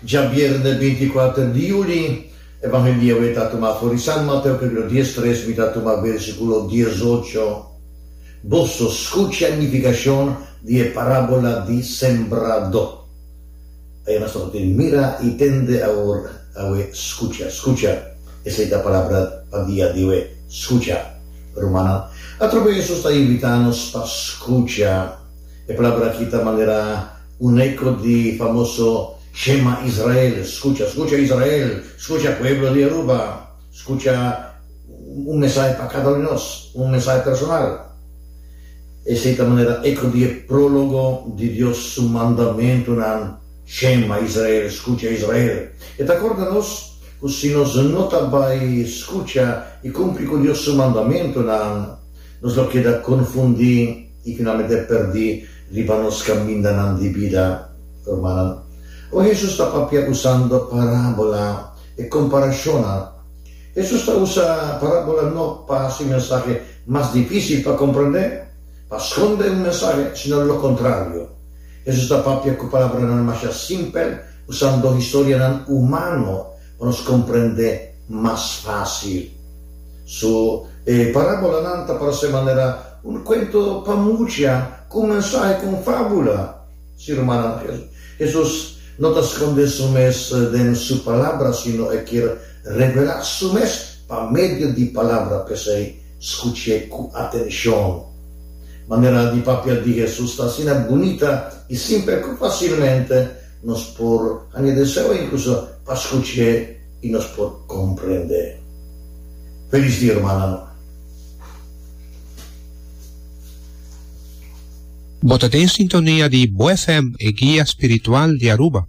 Djabièrnè binti kuater di yuli, Evangelio e ta tumá for di Sant Mateo kapítulo dies tres, mi ta tumá bersikulo dies ocho. Boso skucha e nifikashon di e parábola di sembrado. Ayá nos ta tabata tin mira i tende awor, awe skucha. Skucha, esei ta palabra pa dia di awe, skucha. Rumannan, atrobe Hesus ta invitá nos pa skucha. E palabra aki ta manera un eko di famoso Shema Israel, Skucha, skucha Israel, skucha pueblo di Aruba, skucha, un mensahe pa kada un di nos, un mensahe personal. Esei ta manera eko di e prologo di Dios su mandamentunan, Shema Israel, skucha Israel. E ta korda nos ku si nos no ta bai skucha i kumpli ku Dios su mandamentunan, nos lo keda konfundí, I finalmente perdí riba nos kamindanan di bida. Rumannan, ora Hesus ta papia usando parábola, e komparashonnan, Hesus ta usa parábola no pa hasi mensahe mas difísil pa komprondé, pa skonde un mensahe, sino lokontrario. Hesus ta papia ku palabranan masha simpel, usando historianan humano. pa nos komprendé mas fásil. So, e parábolanan ta para ser manera un kuento pa mucha ku un mensahe ku un fábula. Si, rumannan, Hesus no ta skondé Su mes den Su Palabra, sino E kier revelá Su mes pa medio di Palabra. P'esei, skuch'é ku atenshon. Manera di papia di Hesus ta asina bunita i simpel ku fasilmente Nos por hanga deseo e kusa pa skuch'é i nos por komprend'é. Felis dia rumannan. Bo ta den sintonia di Bo FM, e guia spiritual di Aruba.